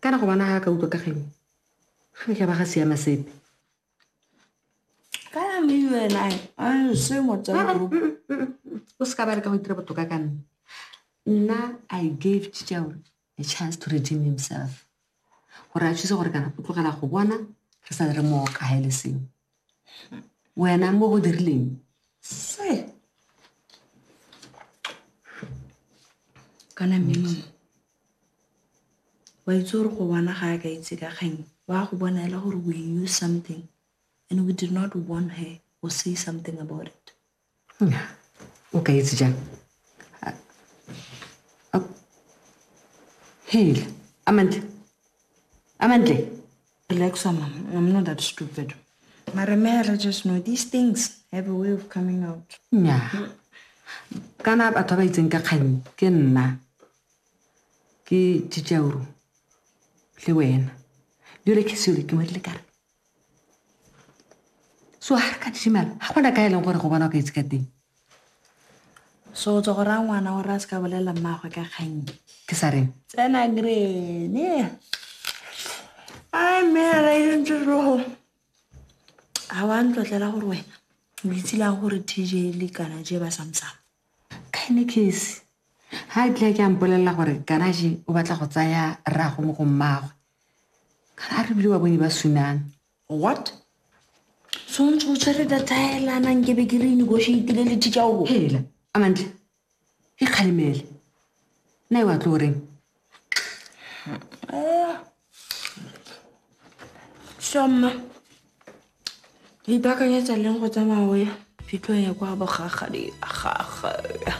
Ka re ngwana ha a ka utlwa ka kgang e, ga e ka ba ga siama sepe. Kana mme you and I, a se mo tsa Ah, group. mm, mm, mm, mm. o se ka ba re ka go itira botoka ka nna nna i gave chichaure a chance to redeem himself gore a thuse gore kana o tlogela go bona re sa re mooka ga e le sengwe wena mo o dirileng se kana mmino wa itse gore go bona ga a ka itse ka kgang wa go bona e le gore we knew something and we did not warn her or say something about it o ka itse jang hela amantle amantle relax mama i'm not that stupid mara mera just know these things have a way of coming out nya kana batho ba ba itseng ka kganyi ke nna ke tšitšauro le wena jole ke sele ke modile kare so ga re ka dishimala ga gona ka e leng gore go bona o ka itse ka teng so o tswa go raya ngwana gore a se ka bolelela mmaagwe ka kgang ke sa reng tsena grene a mme a raentserogo ga wa ntlotlela gore wena o itse lang gore tj le kana je ba samsang Kainikes ha a tla ke a mpolelela gore Garaje o batla go tsaya rrago mo go mmagwe. Kana a re bile wa bone ba sunang. What? So ntse o tshwere data ya elana nke be ke re negotiatile le teacher o. Hela, Amantle. E kgalemele. Nna e wa tlo reng? Shoma. Ke ipakanyetsa leng go tsamaya o ya phitlho ya kwa bogagadi ga gagwe.